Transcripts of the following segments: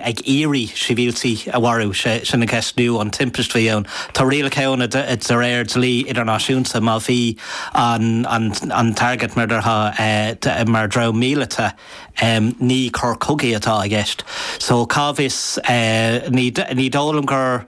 ag iarraidh sibhialtaigh a mharú. Sé sin an cheist inniu, an timpiste a bhí ann. Tá rialacha ann de réir dlí idirnáisiúnta, má bhí an target measta mar thargaid mhíleata, ní coir cogaidh atá i gceist. So cá bhfios, ní dóigh liom gur.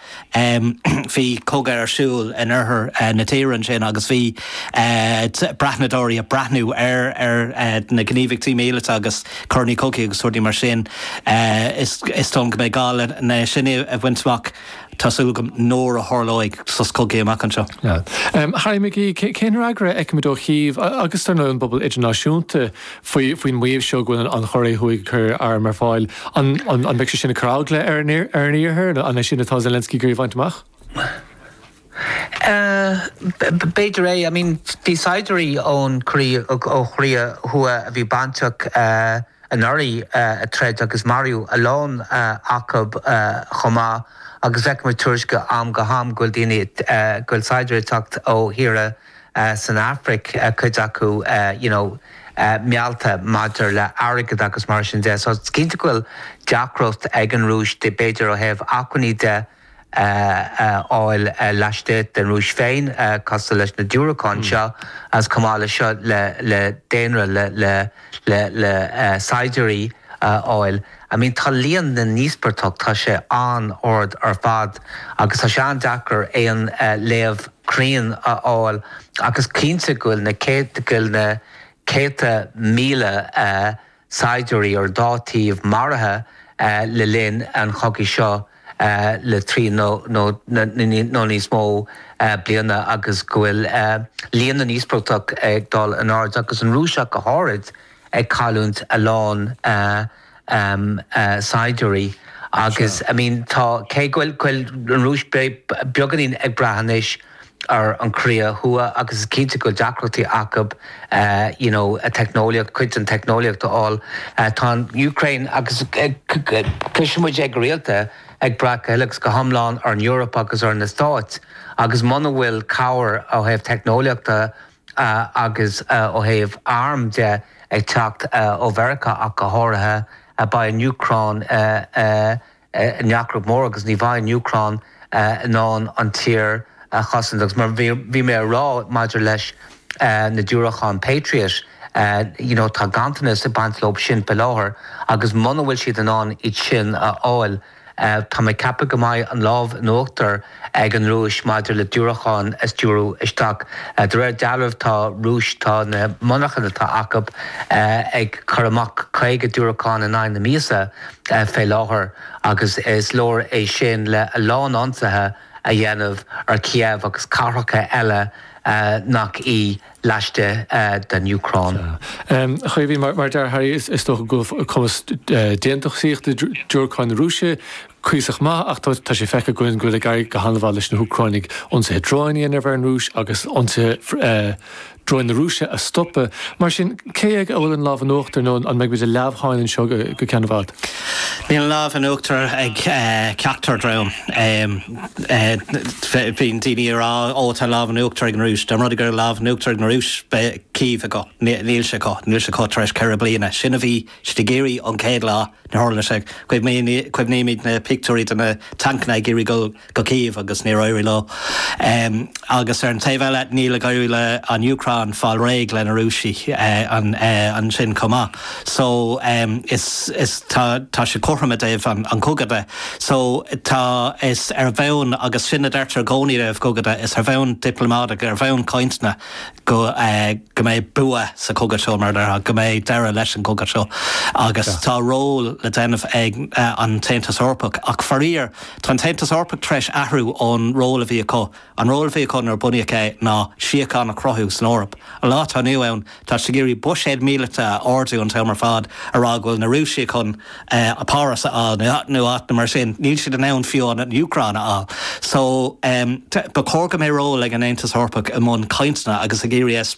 Bhí cogadh ar siúl in oirthear na tíre ansin agus bhí breathnadóirí ag breathnú ar na gníomhaíochtaí míleata agus coireanna cogaidh agus rudaí mar sin. Is dóigh liom go mbeidh gá leis sin a bhaint amach, tá súil agam, nuair a tharlóidh sos cogaidh amach anseo. Harry McGee, Cén fhreagra a fheicfimid ó Chív agus, dar ndóigh, an bpobal idirnáisiúnta faoin maíomh seo go bhfuil an Chóiré Thuaidh ag cur airm ar fáil. An mbeidh sé sin ag cur eagla ar an Iarthar, nó an é sin atá Zelensky ag iarraidh a bhaint amach? B'fhéidir é. I mean, bhí saighdiúirí ó Chóiré Thuaidh a bhí bainteach anuraidh ag troid agus maraíodh a lán acu chomh maith, agus feicimid tuairiscí ó am go ham go bhfuil daoine, go bhfuil saighdiúirí ag teacht ó thíortha san Afraic, cuid acu you know meallta maidir le airgead agus mar sin de. So is cinnte go bhfuil deacracht ag an Rúis b'fhéidir ó thaobh acmhainní de a fháil laistigh den Rúis féin cosúil leis na diúracáin seo ach chomh maith le seo le le daonra le le le le saighdiúirí a fháil. I mean tá líon na n-íospartach tá sé an-ard ar fad agus tá sé an-deacair aon léamh cruinn a fháil ach is cinnte go bhfuil na céad go bhfuil na céadta míle saighdiúirí ar an dá thaobh maraithe le linn an chogaidh seo le trí nó níos mó bliana agus go bhfuil líon na n-íospartach ag dul in airde agus an Rúis ach go háirid ag cailliúint a lán saighdiúirí agus I mean tá cé go bhfuil an Rúis beagáinín ag brath anois ar an gCóiré Thuaidh agus is cinnte go bhfuil deacrachtaí acu you know an teicneolaíocht cuid den teicneolaíocht a fháil tá an Úcráin agus cloiseann muid é go rialta ag brath go huile agus go hiomlán ar an Eoraip agus ar na Stáit agus muna bhfuil cabhair ó thaobh teicneolaíochta agus ó thaobh arm de, ag teacht ó Mheiriceá ach go háirithe, beidh an Úcráin i ndeacracht mhór agus ní bheidh an Úcráin in ann an tír a chosaint. Agus mar a bhí mé a rá maidir leis na diúracáin Patriot, you know, tá ganntanas ag baint leo sin faoi láthair agus muna bhfuil siad in ann iad sin a fháil, Tá mé ag ceapadh go mbeidh an lámh in uachtar ag an Rúis maidir le diúracáin a stiúrú isteach. De réir dealraimh tá Rúis, tá na monarchain atá acu ag cur amach 50 diúracán in aghaidh na míosa fé láthair agus is leor é sin le a lán ionsaithe a dhéanamh ar Kiev agus cathracha eile nach í. laistigh den Úcráin. A Chaoimhín, mar a deir Harry, is dócha go bhfuil cumas déantúsaíochta diúracáin na Rúise cuíosach maith, ach tá sé feicthe againn go bhfuil ag éirí go han-mhaith leis na hÚcráinigh ionsaithe dróin a dhéanamh ar an Rúis agus ionsaithe dróin na Rúise a stopadh. Mar sin, cé aige a bhfuil an lámh in uachtar nó an mbeidh muid i leamhsháinn anseo go ceann i bhfad? Níl an lámh in uachtar ag ceachtar dream. Bíonn daoine ag rá, ó tá lámh in uachtar ag an Rúis. Dá mba rud é go raibh lámh in uachtar ag an Rúis, beidh Cív acu. Níl sé acu. Níl sé acu tar éis ceithre bliana. Sin a bhí siad ag iarraidh ón céad lá. Níor tharla sé. Cuimhnímid ar na pictiúirí de na tancanna ag iarraidh dul go Cív agus níor éirigh leo. Agus ar an taobh eile, níl ag éirí leis an Úcráin fáil réidh leis na Rúisigh ansin chomh maith. So, is, tá sé cothrom i dtaobh an chogadh de. So, tá, is ar bhonn, agus sin a deirtear i gcónaí i dtaobh cogadh, is ar bhonn dioplamáideach, ar bhonn cainteanna go, go mbeidh bua sa chogadh seo, mar a dearfá, go mbeidh deireadh leis an gcogadh seo. Agus tá ról le déanamh ag an tAontas Eorpach. Ach faraor, tá an tAontas Eorpach tar éis athrú ón ról a bhí acu. An ról a bhí, chun ar bunaíodh é ná síocháin a chruthú san Eoraip. An lá atá inniu ann, tá siad ag iarraidh buiséad míleata a ardú an t-am ar fad, ag rá go bhfuil na Rúisigh chun Páras a fháil nó áiteanna mar sin. Níl siad in ann fiú an Úcráin a fháil. So, ba chóir go mbeidh ról ag an Aontas Eorpach i mbun cainteanna agus ag iarraidh